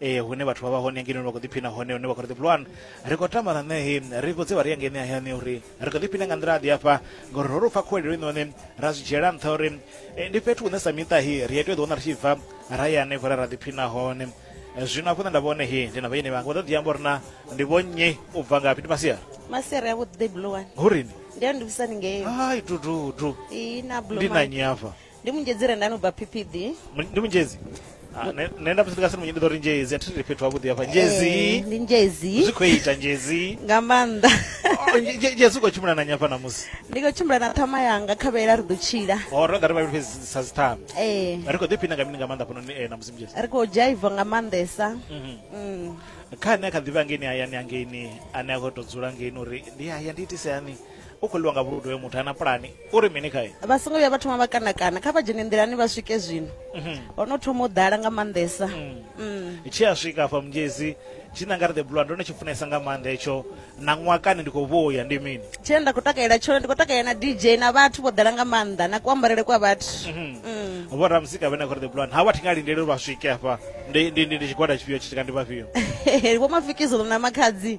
ee hune vhathu vha vha hone ngeno vha khou ḓiphina hone hune vha khou ri ḓipulwana ri khou tama na ṋehe ri khou dzivha ri ya ngene hayani uri ri khou ḓiphina nga nḓila aḓi afha ngori ro ri pfa khuwelelo inoni ra zwi dzhiela nṱha uri eh, ndi fhethu hune sa miṱahi ri ya tea ḓiwana ri tshi bva ra ya hanefho ra ra ḓiphina hone eh, zwino afho nṋe nda vhone he ndi na vhayeni vhanga vha ḓo ḓi amba uri na ndi vhonnyi u bva ngafhi ndi masiara masiara ya vhuḓi ḓibulowane hurini ndi ya ndivhisani ngeyo hai dududu ndi na nyi afha ndi munjedzi re ndani ubva ppd Mu- ndi munjezi Ah, ne- nenda musi ndikasiri munye nditori njezi atiri fhethu havhuḓi hafha Eh, njezi ndi njezi zwi khou ita njezi nga maanḓa Oh, nje- nje- njezi u khou tshimbila na nyafha namusi ndi khou tshimbila na ṱhama yanga kha vhela ri ḓo tshila o ro ḓa ri vhavhili fhedzi sa dziṱhama ee ri khou ḓiphina nga mini nga maanḓa fhanoni eh, namusi munjezi ri khou dzhaiva nga maanḓesa Mhm. Mm. kha ane a kha ḓivha ngeini hayani angeini ane a khou tou dzula ngeini uri ndi haya ndi itise hani u khou ḽiwa nga vhuludu hoyo muthu ana pulani u ri mini khae vha songo vhuya vha thoma vha kanakana kha vha dzhene nḓilani vha swike zwino mhm. ho no thoma u ḓala nga maanḓesa mm. mm. tshi a swika afha mungezi tshi nanga ri the blue ndo no tshi funesa nga maanḓa hetsho na ṅwakani ndi khou vhuya ndi mini tshine nda khou takalela tshone ndi khou takalela na dj na vhathu vho ḓala nga maanḓa na kuambarele kwa vhathu mhm. mm. vho ramuzika vhene khori the blue ha vhathu nga lindele uri vha swike afha ndi tshigwada tshifhio tshi ndi vhafhio vho mafikizo na makhadzi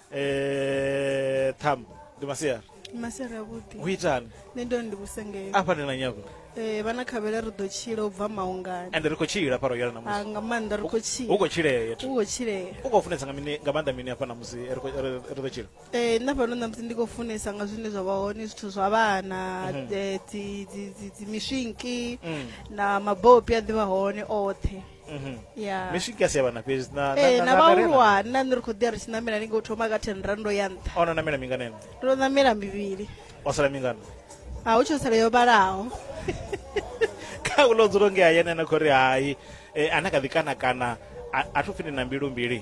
Eh, Tham, ndi masiari. masere avhuḓi Hu itani? nṋe ndo ndi vhusengela Afha ndi na nyago. um vhana khavhela ri ḓo tshila u bva maungani And ri khou tshila fha royal Ah, namusi. nga maanḓa ri khou tshila Hu khou tshilea. u khou tshilea U khou funesa nga mini nga maanḓa mini afha namusi ri khou- ri ri ḓo tshila? um nna fhano ṋamusi ndi khou funesa nga zwine zwa vha hone zwithu zwa vhana um dzi dzi- dzi- dzi miswinki na mabopi a ḓivha hone oṱhe ya mishi ka sia vhana fhedzi na na- ee na- na na vhahulwane vharema. nna nṋe ri khou ḓi ya ri tshi ṋamela ni ngo thoma ka ten rando ya nṱha a ona namela mingana ene ndo ṋamela mivhili o sala mingana a hu tsho sala yo vhalaho kha ulo dzulo nge hayani ana khori hai eh, ana kha ḓi kana kana a- a thu pfhi ndi na mbilu mbili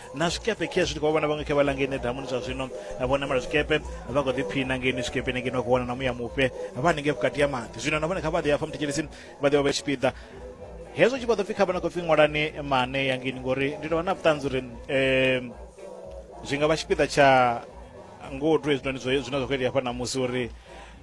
na zwikepe khezwi ndi khou vhona vhaṅwe khe vha langeine damuni zwa zwino vho namela zwikepe vha khou ḓiphina ngeini zwikepeni ngeini vha khou wana na muya mufhe vha haningei vhukati ha maḓi zwino na vhone kha vha ḓi afha muthetshelesi vha ḓivha vha tshipiḓa hezwo tshi vha ḓo pfhi kha vha na khou pfhi ṅwalani mane ya ngeini ngori ndi tovha na vhuṱanzi uri um zwi nga vha tshipiḓa tsha ngodu hezwinoni zwine zwa khou itea hafha namusi uri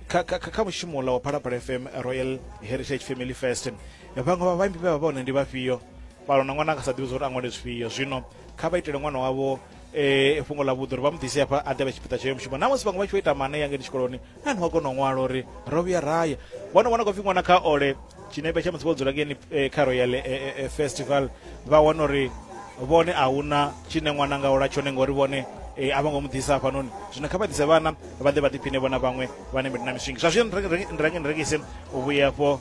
kha, kha, kha mushumo ula wa phalaphala fm royal heritage family fest vhaṅwe vha vhaimbi vhe vha vha hone ndi vhafhio fhano na ṅwana a nga sa ḓivhi zwa uri a ṅwale zwifhio zwino kha vha itele ṅwana wavho eh fhungo ḽa vhuḓi uri vha mu ḓise hafha a ḓevhe tshipiḓa tshayo mushumo na musi vhaṅwe vha tshi vho ita mane yangeni tshikoloni na ni wa kona u ṅwala uri ro vhuya raya vhono vhona khou pfi ṅwana kha ole tshinepe tsha musi vho dzula ngeni eh, kha royal eh, eh, eh, festival vha wana uri vhone a huna tshine ṅwana nga ola tshone ngori vhone eh, a vho ngo mu ḓisa hafhanoni zwino kha vha ḓise vhana vha ḓe vha ḓiphine vhona vhaṅwe vhane na miswingi zwa zwino ni renge- ni renge- ni rengise u vhuya afho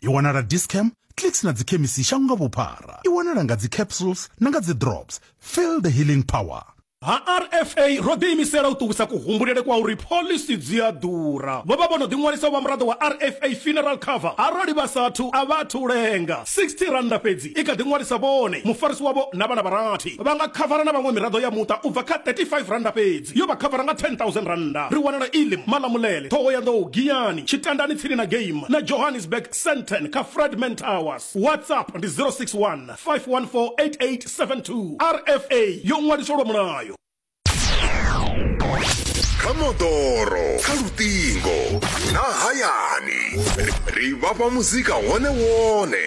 i wanala discam clicks na dzikhemisi shango nga vhuphara i wanala nga dzicapsules na nga dzidrops feel the healing power ha rfa ro ḓiimisela u ṱuwisa kuhumbulele kwa uri phoḽisi dzi a ḓura vho vha vho no ḓiṅwalisa u vha muraḓo wa rfa funeral cover arali vha sathu a vha athu lenga 60 rannda fhedzi i kha ḓi ṅwalisa vhone, mufarisi wavho na vhana vha rathi. Vha nga khavara na vhaṅwe miraḓo ya muṱa u bva kha R35 fhedzi. Yo vha khavara nga R10,000. Ri wanala Elim, Malamulele, Thohoyandou, Giyani, Tshitandani tsini na Game na Johannesburg, Sandton kha Fredman Towers. WhatsApp ndi 061 514 8872. RFA yo ṅwaliswa lwa mulayo. Kha moḓoro, kha luṱingo na hayani, ri vhafha muzika wone wone.